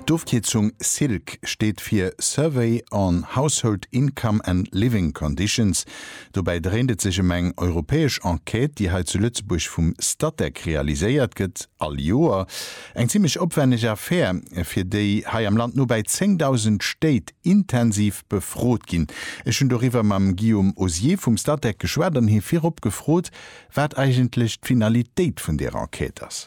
D'Ofkierzung SILC steet fir Survey on Household Income and Living Conditions. Dobäi dréint et sech ëm eng europäesch Enquête, déi hei zu Lëtzebuerg vum Statec realiséiert gëtt, all Joer. Eng zimmlech opwänneg Affär, fir déi hei am Land nobäi 10.000 Stéit intensiv befrot ginn. Ech hunn doriwwer mam Guillaume Osier vum Statec geschwat an hie virop gefrot, wat eigentlech d'Finalitéit vun där Enquête ass.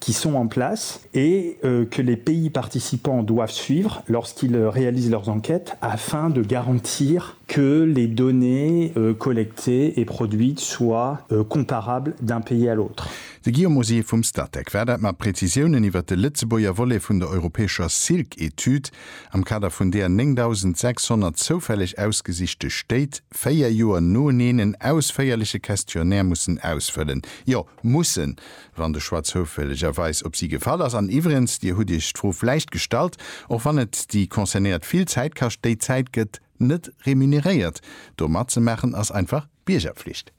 qui sont en place et que les pays participants doivent suivre lorsqu'ils réalisent leurs enquêtes afin de garantir que les données collectées et produites soient comparables d'un pays à l'autre. De Guillaume Osier vum Statec war dat mat Prezisiounen iwwert de Lëtzebuerger Volet vun der europäescher Silk-Etüd, am Kader vun där 9.600 zoufälleg ausgesichte Stéit véier Joer noeneen en ausféierleche Questionnaire mussen ausfëllen. Jo, Mussen, wann de Choix zoufällegerweis op si gefall ass. An iwwregens, Dir hutt Iech d'Fro vläicht gestallt, och wann et déi Concernéiert vill Zäit kascht, déi Zäit gëtt net remuneréiert. Do matzemaachen ass einfach Biergerpflicht.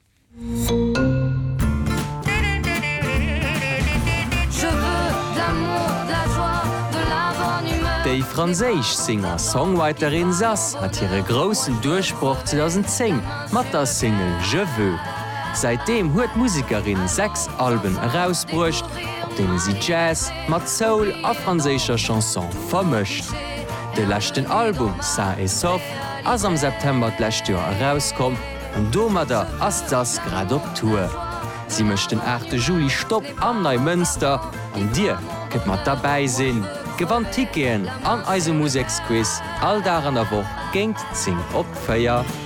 Déi franséisch Singer-Songwriterin Zaz hat hire groussen Duerchbroch 2010 mat der Single Je veux. Säitdeem huet d'Musekerin sechs Alben erausbruecht, op deene si Jazz mat Soul a franséischer Chanson vermëscht. De leschten Album Sain et Sauf ass am September d'lescht Joer erauskomm an domadder ass d'Sass grad op Tour. Si mécht den 8 Juli Stopp am Neimënster an dir kënnt mat derbäi sinn, gewannt Ticketen an eise Museksquiz all Dag an der Woch géint 10 op 4.